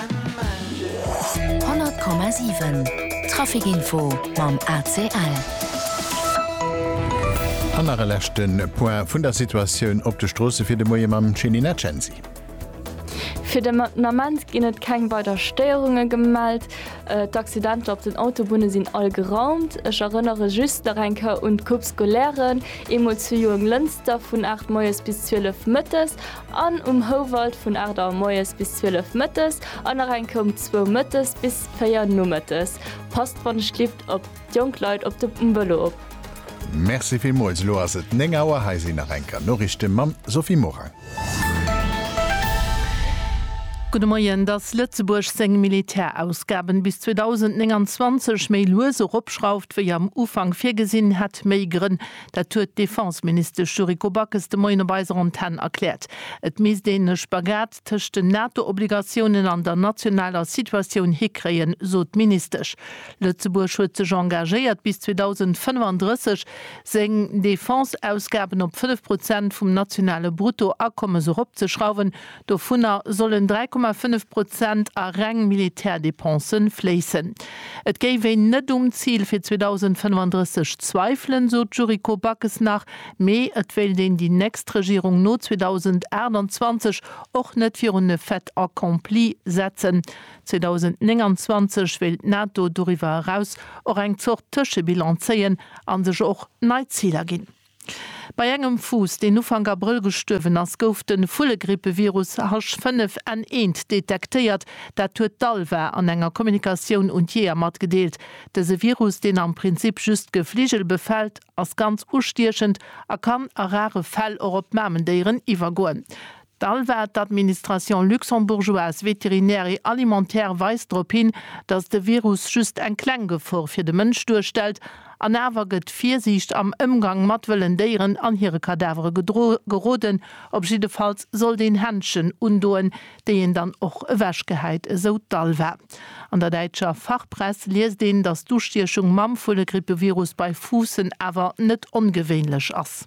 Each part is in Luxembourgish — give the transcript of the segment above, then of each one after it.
100,7 Trafikinfo mam ACL. An nach e leschte Point vun der Situatioun op de Stroosse fir de Moie mam Céline Acensi. Fir de Moment ginn et keng weider Stéierunge gemellt. D'Accidenter op den Autobunne sinn all geraumt. Ech erënnere just nach eng Kéier un d'Coupes scolaires, eemol zu Juanglënster vun 8 moies bis 12 mëttes. An um Houwald vun 8 Auer moies bis 12 mëttes an nach eng Kéier um zwou mëttes bis 4 nomëttes. Passt wann e schlippt op d'jonk Leit op dem um Vëlo op. Merci villmools, elo ass et 9 Auer, hei sinn nach eng Kéier Noriichten mam Sophie Morang. Gudde Moien, Dass Lëtzebuerg seng Militärausgaben bis 2029 méi lues eropschrauft wéi am Ufank virgesinn, hätt méi Grënn. Dat huet d'Defenseministesch Yuriko Backes de Moien op eiser Antenn erkläert. Et misst een e Spagat tëscht den NATO-Obligatiounen an der nationaler Situatioun hikréien, sot d'Ministesch. Lëtzebuerg huet sech engagéiert, bis 2035 seng Defense-Ausgaben op fënnef Prozent vum nationale Bruttoakommes eropzeschrauwen, Dovunner sollen 3,5 Prozent a reng Militärdepense fléissen. Et géif een net um Zil fir 2035 zweifelen, sot d'Yuriko Backes nach, mee et wéilt een déi nächst Regierung no 2028 och net virun e Fait accompli setzen. 2029 wéilt d'NATO doriwwer eraus och eng Zort Tëschebilan zéien a sech och nei Ziler ginn. Bei engem Fuuss, deen Ufank Abrëll gestuerwen ass, gouf de Vullegrippevirus H5N1 detektéiert. Dat huet d'ALVA an enger Kommunikatioun un d'Jeeër matgedeelt. Dëse Virus, deen am Prinzip just Gefligel befält, ass ganz ustiechend a kann a rare Fäll och op Mamendéieren iwwergoen. D'ALVA, d'Administration luxembourgeoise vétérinaire et alimentaire, weist drop hin, datt de Virus just eng kleng Gefor fir de Mënsch duerstellt, an awer gëtt Virsiicht am Ëmgang mat wëllen Déieren an hire Kadavere geroden. Op jiddefalls sollt een Händschen undoen, déi een dann och ewech gehäit, esou d'ALVA. An der däitscher Fachpress liest een, datt d'Ustiechung mam Vullegrippevirus bei Fuussen awer net ongewéinlech ass.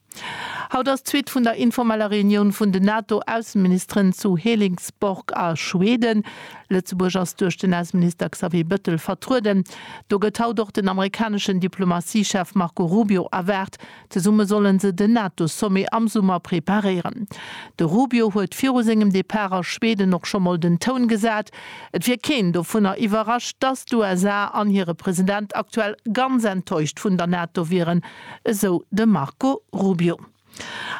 Haut ass d'Suite vun der informeller Reunioun vun den NATO-Ausseministeren zu Helingsborg a Schweden. Lëtzebuerg ass duerch den Ausseminister Xavier Bëttel vertrueden. Do gëtt haut och den amerikaneschen Diplomatie-Chef Marco Rubio erwaart. Zesumme solle se den NATO-Sommet am Summer preparéieren. De Rubio huet viru sengem Depart a Schweden och scho mol den Toun gesat. Et wier keen dovunner iwwerrascht, datt d'USA an hire President aktuell ganz enttäuscht vun der NATO wieren, esou de Marco Rubio.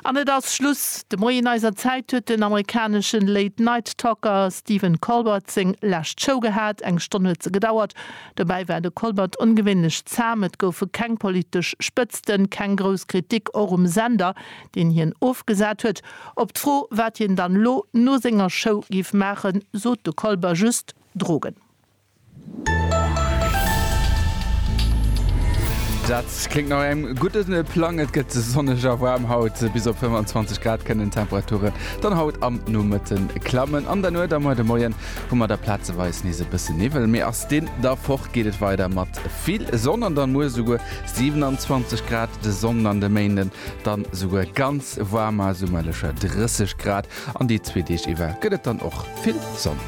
An et ass Schluss! De Moien eiser Zäit huet den amerikaneschen Late Night Talker Stephen Colbert seng lescht Show gehat. Eng Stonn huet se gedauert. Dobäi war de Colbert ongewéinlech zahm. Et goufe keng politesch Spëtzten, keng grouss Kritik, och um Sender, deen hien ofgesat huet. Op d'Fro, wat hien dann elo no senger Show géif maachen, sot de Colbert just, Drogen. Dat kléngt no engem gudde Plang. Et gëtt sonneg a waarm haut. Bis op 25 Grad kënnen d'Temperature dann haut am Nomëtte klammen. An der Nuet a muer de Moien hu mer da plazeweis nees e bësse Niwwel, mee ass deen da fort, geet et weider mat vill Sonn an dann muer esouguer 27 Grad. De Sonnden an de Méinden dann esouguer ganz waarm, ma summerlecher 30 Grad. An déi zwee Deeg iwwer gëtt et dann och vill Sonn.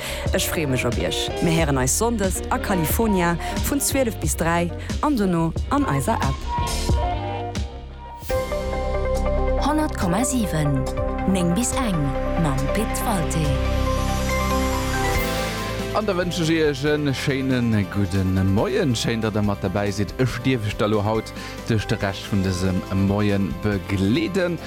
Ech freeë mech op iech. Mir héieren eis Sonndes a California vun 12 bis 3 an dono an eiser App. 100,7 9 bis eng mam Pit Walté. An da wënschen ech iech e schéine gudde Moien. Schéin, datt der mat derbäi sidd. Ech dierf iech da lo haut duerch de Rescht vun dësem Moie begleeden.